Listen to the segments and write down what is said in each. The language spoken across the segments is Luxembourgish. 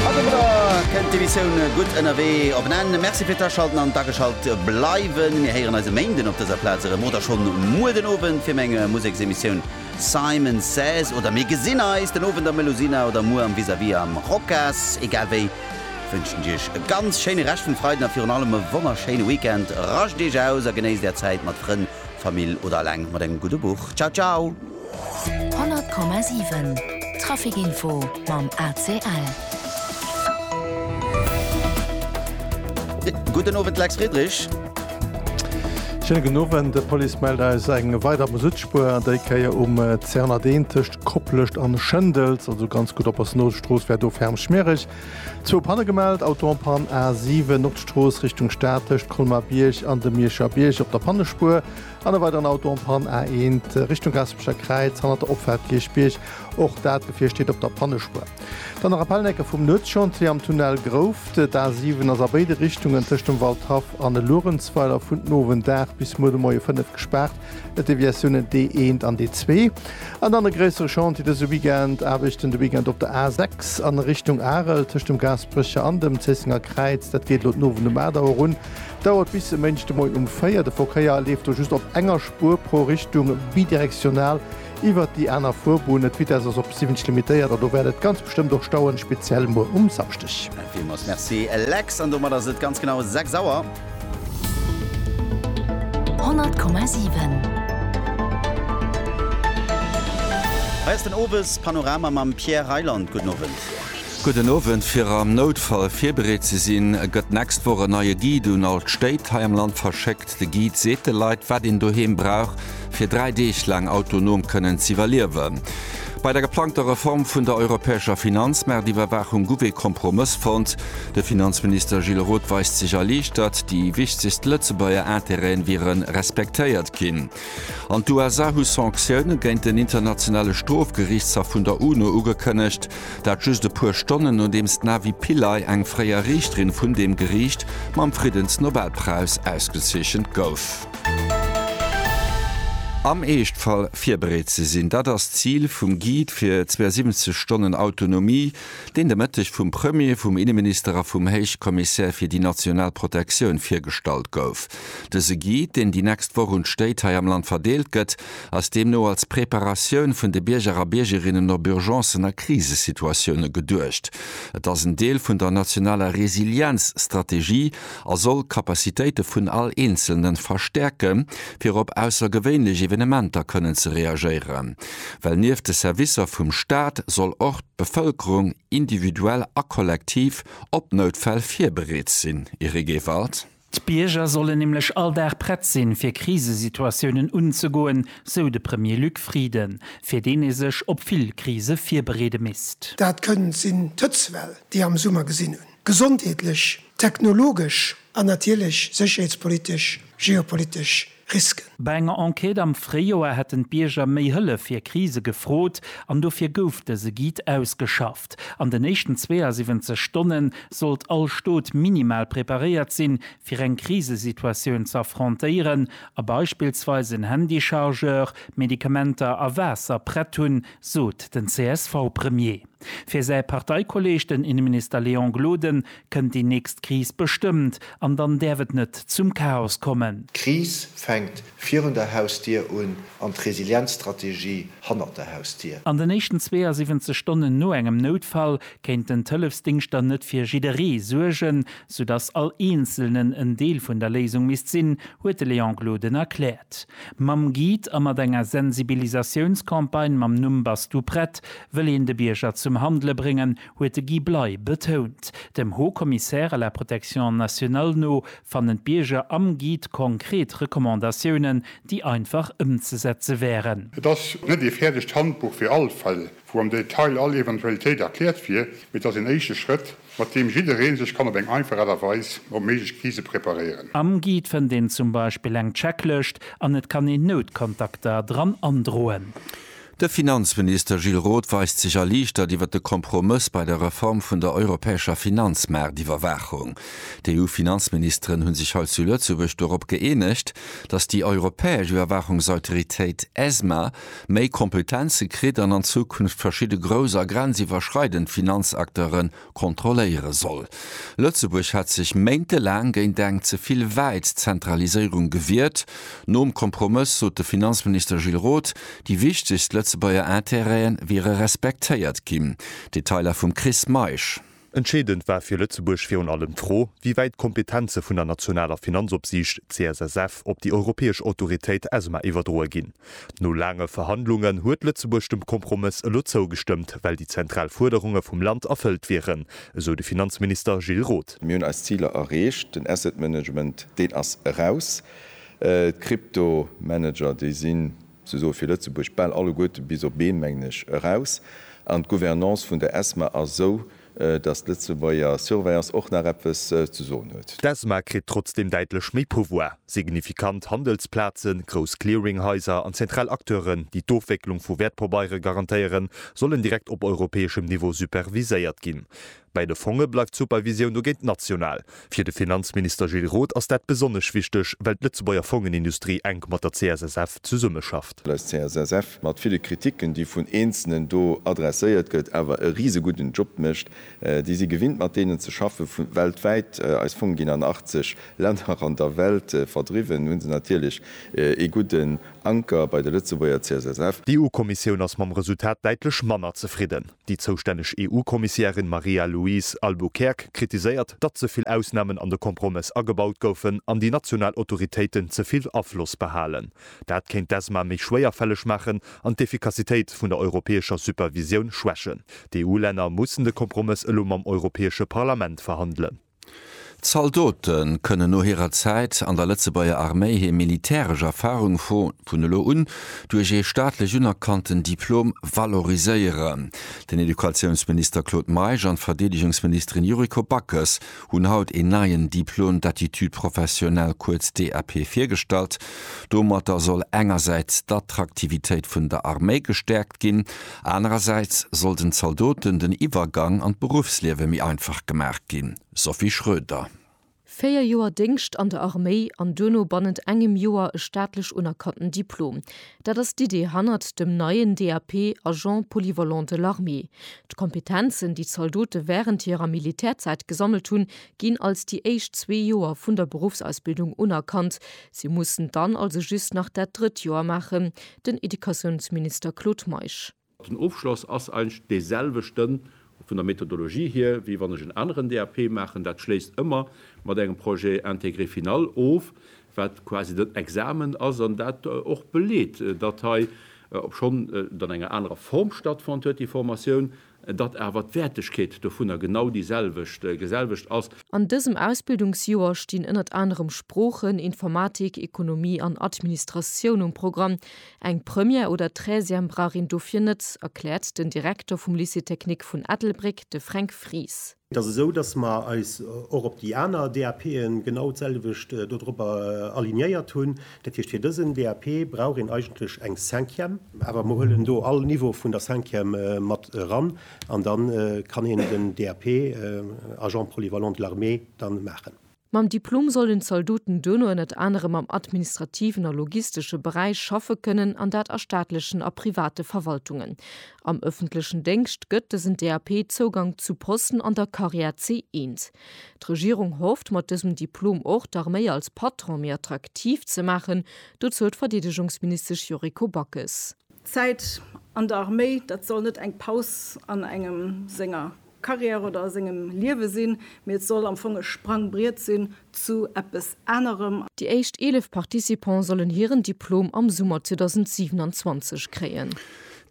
A domadder kënnt d'Emissioun Gutt ënnerwee op en Enn. Merci fir d'Aschalten an d'ageschalt bleiwen. Mir héieren eis e Méinden op dëser Plaz erëm oder schonn muer den Owend fir meng Museksemissioun Simon Says. Oder mir gesinn eis den Owend am Melusina oder muer am Vis-à-Vis am Rocas. Egal wéi wënschen ech iech e ganz schéine Rescht vum Freiden a virun allem e wonnerschéine Weekend. Rascht iech aus a genéisst är Zäit mat Frënn, Famill oder eleng mat engem gudde Buch. Ciao ciao! 100,7 Trafic Info mam ACL. Gudden Owend Lex Friedrich. Schéine gudden Owend. D'Police mellt eis eng weider Moussutspuer, déi Kéier um C101 tëscht Koplescht an Schëndels, also ganz gutt oppassen, Nodestrooss wär do ferm schmiereg. Zwou Panne gemellt, Auto en Panne A7, Nordstrooss Richtung Stad tëscht Colmar-Bierg an dem Mierscher Bierg op der Pannespuer. An e weideren Auto en Panne, A1 Richtung Gaspecher Kräiz, hannert der Opfaart Kierchbierg. Och dat Gefier steet op der Pannespuer. Dann nach e Pellen-Ecke vum Nuetschantier am Tunnel Grouft. D'A7 ass a béide Richtungen tëscht dem Waldhaff an e Luerenzweiler vun den Owend 8 bis muer de Moie 5 gespaart. Et Deviatiounen D1 an D2. An dann e gréissere Chantier dëse Weekend, Aarbechten de Weekend op der A6 a Richtung Arel tëscht dem Gaspecher an dem Zéissenger Kräiz. Dat geet elo den Owend um 8 Auer un. Dauert bis e Méindeg de Moien um 4. De Verkéier leeft do just op enger Spuer pro Richtung, bidirektional iwwert déi aner Fuerbunnen. D'Vitess ass op 70 limitéiert a do wäert et ganz bestëmmt och stauen, speziell muer um Samschdeg. Villmools Merci Lex, an domat ass et ganz genau 6 Auer. 100,7. Hei ass den Owes Panorama mam Pierre Reyland. Gudden Owend. Gudden Owend, fir am Noutfall virbereet ze sinn, gëtt d'nächst Woch en neie Guide un all d'Stéit hei am Land verschéckt. De Guide seet de Leit, wat een doheem brauch, fir dräi Deeg laang autonom kënnen z'iwwerliewen. Bei der geplangter Reform vun der europäescher Finanzmaartiwwerwaachung guff ee Kompromëss fonnt. De Finanzminister Gilles Roth weist sech erliichtert, déi wichtegst Lëtzebuerger Interêten wiere respektéiert ginn. An d'USA hu Sanktioune géint den internationale Strofgeriichtshaff vun der UNO ugekënnegt. Dat just e puer Stonnen nodeems d'Navi Pillay, eng fréier Riichterin vun deem Geriicht, mam Friddensnobelpräis ausgezeechent gouf. Am Eeschtfall virbereet ze sinn, dat ass d'Zil vum Guide fir 72 Stonnen Autonomie, deen de Mëtteg vum Premier, vum Inneminister a vum Héichkommissär fir déi national Protektioun virgestallt gouf. Dëse Guide, deen déi nächst Woch un d'Stéit hei am Land verdeelt gëtt, ass deemno als Preparatioun vun de Bierger a Biergerinnen op Urgencen a Krisesituatioune geduecht. Et ass en Deel vun der nationaler Resilienzstrategie a soll d'Capacitéite vun all Eenzelne verstäerke fir op aussergewéinlech Evenementer kënnen ze reagéieren. Well nieft de Servicer vum Staat soll och d'Bevëlkerung individuell a kollektiv op Noutfäll virbereet sinn. Eric Ewald. D'Bierger sollen nämlech all Dag prett sinn, fir Krisesituatiounen unzegoen, sou de Premier Luc Frieden, fir deen ee sech op vill Krise virbereede misst. Dat kënnt sinn d'Hëtzwell, déi e am Summer gesinn hunn, gesondheetlech, technologesch an natierlech sécherheetspolitesch, geopolitesch Risken. Bei enger Enquête am Fréijoer hätten d'Bierger méi Hëllef fir Krise gefrot an dofir gouf dëse Guide ausgeschafft. An den éischten 72 Stonne sollt all Stot minimal preparéiert sinn, fir eng Krisesituatioun ze affrontéieren a beispillsweis en Handychargeur, Medikamenter a Waasser prett hunn, sot den CSV-Premier. Fir säi Parteikolleeg, den Inneminister Léon Gloden, kënnt déi nächst Kris bestëmmt, an dann däerf et net zum Chaos kommen. D'Kris fänkt virun der Hausdier un an d'Resilienzstrategie hannert der Hausdier. An den éischten 72 Stonnen no engem Noutfall kéinten d'Hëllefsdingschter net fir jidderee suergen, soudass all Eenzelnen en Deel vun der Léisung misst sinn, huet de Léon Gloden erkläert. Mam Guide a mat enger Sensibilisatiounscampagne mam Numm Bass du prett? wëll een de Bierger zum Handele bréngen, huet de Guy Bley betount. Dem Haut Commissaire à la protection nationale no fannen d'Bierger am Guide konkret Recommandatiounen, déi einfach ëmzesetze wären. Et ass net ee fäerdegt Handbuch fir all Fall, wou am Detail all Eventualitéit erkläert wier, mee et ass een éischte Schrëtt, mat deem jidderee sech kann op eng einfach Aart a Weis op méiglech Krise preparéieren. Am Guide fënnt een zum Beispill eng Checklëscht an et kann een Noutkontakter dran androen. De Finanzminister Gilles Roth weist sech erliichtert iwwer de Kompromëss bei der Reform vun der europäescher Finanzmaartiwwerwaachung. D'EU-Finanzministeren hu sech hei zu Lëtzebuerg dorop gëeenegt, datt déi europäesch Iwwerwaachungsautoritéit ESMA méi Kompetenze kritt an an Zukunft verschidde grouss a grenziwwerschreidend Finanzakteuren kontrolléiere soll. Lëtzebuerg hat sech méintelaang géint eng ze vill wäit Zentraliséierung gewiert. Nom Kompromëss sot de Finanzminister Gilles Roth, déi wichtegst Lëtzebuerger Intérêt'en wiere respektéiert ginn. Detailer vum Chris Meisch. Entscheedend war fir Lëtzebuerg virun allem d'Fro, wéi wäit d'Kompetenze vun der nationaler Finanzopsiicht, CSSF, op déi europäesch Autoritéit, ESMA, iwwerdroe ginn. No laange Verhandlungen huet Lëtzebuerg dem Kompromëss elo zougestëmmt, well déi zentral Fuerderunge vum Land erfëllt wieren, esou de Finanzminister Gilles Roth. Mir hunn eis Ziler erreecht. Den Asset Management, deen ass eraus. D'Kryptomanager, déi sinn sousoe fir Lëtzebuerg bal alleguerte bis op een, mengen ech, eraus. An d'Gouvernance vun der ESMA ass esou, datt d'Lëtzebuerger Surveillance och nach eppes ze soen huet. D'ESMA kritt trotzdeem däitlech méi Pouvoir. Signifikant Handelsplazen, grouss Clearinghaiser an zentral Acteuren, déi d'Ofwécklung vu Wäertpabeiere garantéieren, sollen direkt op europäeschem Niveau superviséiert ginn. Bei de Fonge bleift d'Supervisioun dogéint national. Fir de Finanzminister Gilles Roth ass dat besonnesch wichteg, well d'Lëtzebuerger Fongenindustrie enk mat der CSSF zesummeschafft. Well eis CSSF mat ville Kriticken, déi vun Eenzelnen do adresséiert gëtt, awer e risegudden Job mécht. Déi si gewinnt, mat deenen ze schaffen, vu weltwäit. Eis Fonge ginn an 80 Länner an der Welt verdriwwen. Hu se natierlech ee gudden Anker bei der Lëtzebuerger CSSF. D'EU-Kommissioun ass mam Resultat däitlech manner zefridden. Déi zoustänneg EU-Kommissiärin Maria-Louise Albuquerque kritiséiert, datt ze vill Ausnamen an de Kompromëss agebaut goufen an déi national Autoritéiten ze vill Afloss behalen. Dat kéint d'ESMA méi schwéierfälleg maachen an d'Effikassitéit vun der europäescher Supervisioun schwächen. D'EU-Länner mussen de Kompromëss elo mam Europäesche Parlament verhandelen. Zaldote kënnen no hirer Zäit an der Lëtzebuerger Arméi hir militäresch Erfarung vun elo un duerch ee staatlech unerkannten Diplom valoriséieren. Den Educatiounsminister Claude Meisch an d'Verdeedegungsministerin Yuriko Backes hunn haut een neien Diplôme d'aptitude professionnelle, kuerz DAP, virgestallt. Domatter soll engersäits d'Attraktivitéit vun der Arméi gestäerkt ginn, Anerersäits soll den Zaldoten den Iwwergang an d'Beruffsliewe méi einfach gemaach ginn, Sophie Schroeder. Véier Joer Déngscht an der Arméi an duerno bannent engem Joer e staatlech unerkannten Diplom, dat ass d'Idee hannert dem neien DAP Agent polyvalent de l'armée. D'Kompetenzen, déi d'Zaldote wärend hirer Militärzäit gesammelt hunn, ginn als déi éischt zwee Joer vun der Beruffsausbildung unerkannt. Si mussen dann also just nach dat drëtt Joer maachen, den Educatiounsminister Claude Meisch. Den Ofschloss ass eigentlech dee selwechte vun der Methodologie hier, wéi wann ech en aneren DAP maachen. Dat schléisst ëmmer mat engem Projet intégré final of, wat quasi den Examen ass an dat och beleet, datt hei, obschonn et an enger anerer Form stattfonnt huet, déi Formatioun, datt awer d'Wäertegkeet dovunner genau déi selwecht, selwecht ass. An dësem Ausbildungsjoer stinn ënnert anerem Sproochen, Informatik, Ekonomie an Administratioun um Programm. Eng Première oder Treizième brauch een dofir net, erkläert den Direkter vum Lycée technique vun Ettelbréck, de Fränk Fries. Et ass esou, dass mer eis och op déi aner DAPe genau d'selwecht dodropper alignéiert hunn. Dat heescht, fir dësen DAP brauch een eigentlech eng Cinquième. Awer mer huelen do all Niveau vun der Cinquième mat eran an da kann een den DAP Agent polyvalent de l'armée da maachen. Mam Diplom sollen d'Zaldoten duerno ënnert anerem am administrativen a logistesche Beräich schaffe kënnen, an dat a staatlechen a private Verwaltungen. Am ëffentlechen Déngscht gëtt dësen DAP Zougank zu Posten an der Karriär C1. D'Regierung hofft, mat dësem Diplom och d'Arméi als Patron méi attraktiv ze maachen, dozou d'Verdeedegungsministesch Yuriko Backes. D'Zäit an der Arméi, dat soll net eng Paus an engem senger Karriär oder a sengem Liewe sinn, mee et soll am Fong e Sprangbriet sinn zu eppes anerem. Déi éischt 11 Participants sollen hiren Diplom am Summer 2027 kréien.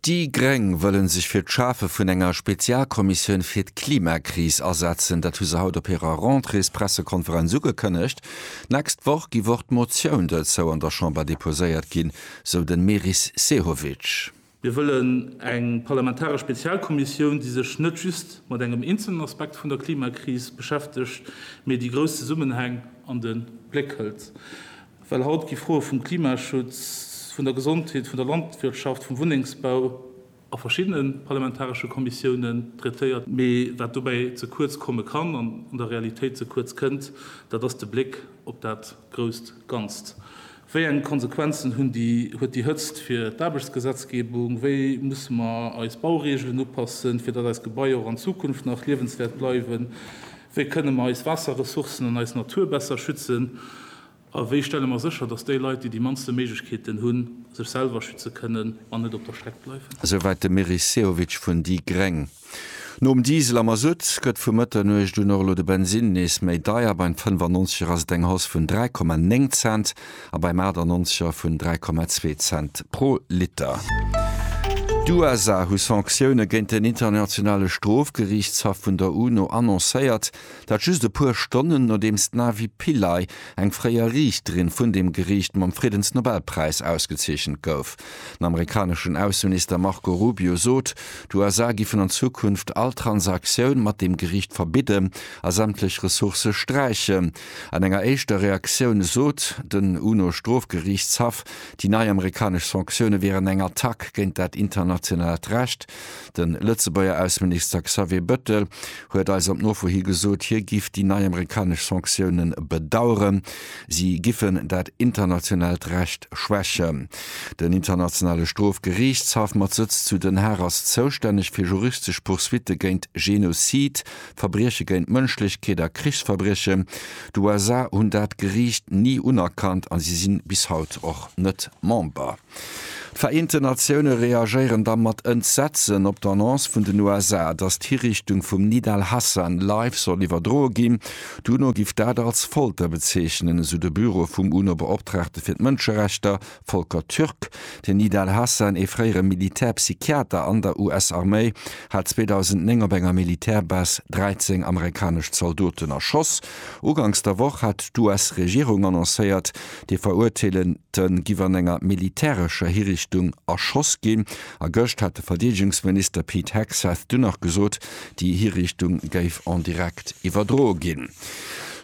Déi Gréng wëlle sech fir d'Schafe vun enger Spezialkommissioun fir d'Klimakris asetzen. Dat hu se haut op hirer Rentréespressekonferenz ugekënnegt. D'nächst Woch giff och d'Motioun dozou an der Chamber deposéiert ginn, sou den Meris Sehovic. Mir wëllen eng parlamentaresch Spezialkommissioun, déi sech net just mat engem eenzelen Aspekt vun der Klimakris beschäftegt, mee déi grouss Zesummenhäng an de Bléck hëlt. Well haut gi Froe vum Klimaschutz, vun der Gesondheet, vun der Landwirtschaft, vum Wunnengsbau a verschiddene parlamentaresche Kommissiounen traitéiert. Mee wat dobäi ze kuerz komme kann an an der Realitéit ze kuerz kënnt, dat ass de Bléck op dat grousst Ganzt. Wéi eng Konsequenzen hunn déi, huet déi Hëtzt fir d'Aarbechtsgesetzgebung? Wéi musse mer eis Baureegelen upassen, fir datt eis Gebaier och an Zukunft nach liewenswäert bleiwen? Wéi kënne mer eis Waasserressourcen an eis Natur besser schützen? A wéi stelle mer sécher, datt déi Leit, déi déi mannste Méiglechkeeten hunn, sech selwer schütze kënnen an net op der Streck bleiwen? Esouwäit de Meris Sehovic vun déi gréng. Nom Diesel a Masutt gëtt vu Mëtternuecht un och elo de Bensinn nees méi deier, beim 95 er ass et eng Hausse vun 3,9 Cent a beim 98 er vun 3,2 Cent pro Liter. D'USA hu Sanktioune géint den Internationale Strofgeriichtshaff vun der UNO annoncéiert, dat just e puer Stonnen nodeems d'Navi Pillay, eng fréier Riichterin vun deem Geriicht, mam Friddensnobelpräis ausgezeechent gouf. Den amerikaneschen Ausseminister Marco Rubio sot, d'USA giffen an Zukunft all Transaktioun mat deem Geriicht verbidden a sämtlech Ressourcë sträichen. An enger éischter Reaktioun sot den UNO-Strofgeriichtshaff, déi nei amerikanesch Sanktioune wieren eng Attack géint dat internationaalt Recht. De Lëtzebuerger Ausseminister Xavier Bëttel huet eis op Nofro hi gesot, hie giff déi nei amerikanesch Sanktioune bedaueren. Si giffen dat internationaalt Recht schwächen. Den Internationale Strofgeriichtshaff mat Sëtz zu Den Haag ass zoustänneg fir juristesch Poursuitte géint Genozid, Verbrieche géint d'Mënschlechkeet a Krichsverbriechen. D'USA hunn dat Geriicht ni unerkannt a si si bis haut och net Member. D'Vereenten Natioune reagéieren da mat Entsetzen op d'Annonce vun den USA, datt d'Hiriichtung vum Nidal Hasan live soll iwwerdroe ginn. D'UNO giff dat als Folter bezeechnen, esou de Büro vum UNO-Beoptraagte fir d'Mënscherechter, Volker Türk. Den Nidal Hasan, ee fréiere Militärpsychiater an der US-Arméi, hat 2009 op enger Militärbase 13 amerikanesch Zaldoten erschoss. Uganks der Woch hat d'US-Regierung annoncéiert, déi Verurteelen, D'Te giff an enger militärescher Hirichtung erschoss ginn, a gëscht hat de Verdeedegungsminister Pete Hegseth dunn nach gesot, déi Hirichtung géif en direct iwwerdroe ginn.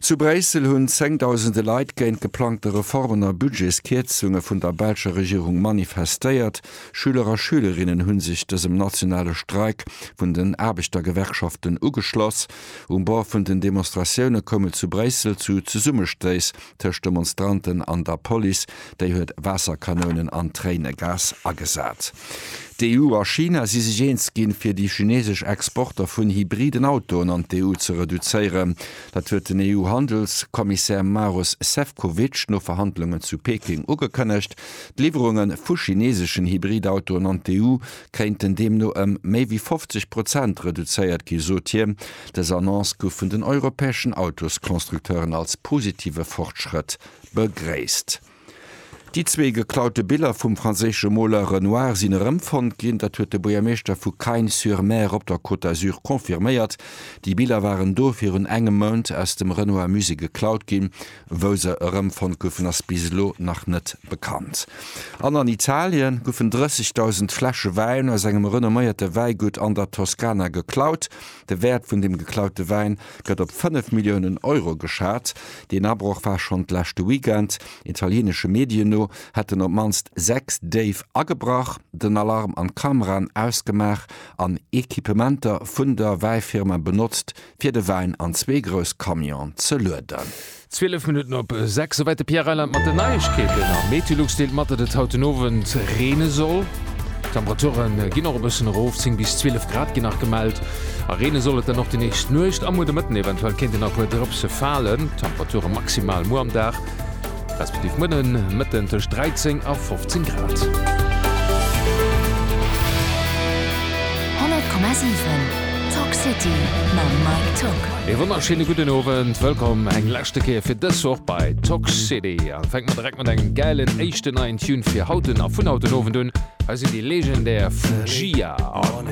Zu Bréissel hunn zéngdausende Leit géint d'geplangte Reformen a Budgetskierzunge vun der belscher Regierung manifestéiert. Schüler a Schülerinnen hu sech dësem nationale Streik vun den Aarbechtergewerkschaften ugeschloss. Um Bord vun den Demonstratioune koum et zu Bréissel zu Zesummestéiss tëscht Demonstranten an der Police, déi huet Waasserkanounen an Tréinegas agesat. D'EU a China si sech eens ginn, fir déi chinesesch Exporter vun hybriden Autoen an d'EU ze reduzéieren. Dat huet den EU-Handelskommissär Maros Sefcovic no Verhandlungen zu Peking ugekënnegt. D'Liwwerunge vu chineseschen Hybridautoen an d'EU kéinten deemno ëm méi wéi 50 Prozent reduzéiert gi, sot hien. Dës Annonce gouf vun den europäeschen Autosconstructeuren als positive Fortschrëtt begréisst. Déi zwee geklaute Biller vum franséische Moler Renoir sinn erëmfonnt ginn. Dat huet de Buergermeeschter vu Cagnes-sur-Mer op der Côte d'Azur confirméiert. Déi Biller waren do virun engem Mount aus dem Renoir-Musée geklaut ginn. Wou se erëmfonnt goufen, ass bis elo nach net bekannt. An an Italie goufen 30.000 Fläsche Wäin aus engem renomméierte Wäigutt an der Toskana geklaut. De Wäert vun dem geklaute Wäin gëtt op 5 Milliounen Euro geschat. Deen Abroch war schonn d'leschte Weekend. Italieenesche Medien no hätten op d'mannst 6 Déif agebrach, den Alarm an d'Kameraen ausgemaach an Equipementer vun der Wäifirma benotzt, fir de Wäin an zwee grouss Camionen ze lueden. 12 Minutten op 6, souwäit de Pierre Reyland mat den Neiegkeeten. Am Meteolux deelt mat, datt et haut den Owend reene soll. D'Temperature ginn och e bëssen erof, 10 bis 12 Grad ginn nach gemellt. A reene soll et dann och déi nächst Nuecht a muer de Mëtten, eventuell kéinten nach e puer Drëpse falen. D'Temperature maximal muer am Dag respektiv muer den Mëtten tëscht 13 a 15 Grad. E wonnerschéine gudden Owend, wëllkomm eng leschte Kéier fir dës Woch bei Tock City. An fänkt mer direkt mat engem gäilen éischten neien Tune fir haut a vun haut den Owend un. Hei sinn déi legendär Fu-Gi-A an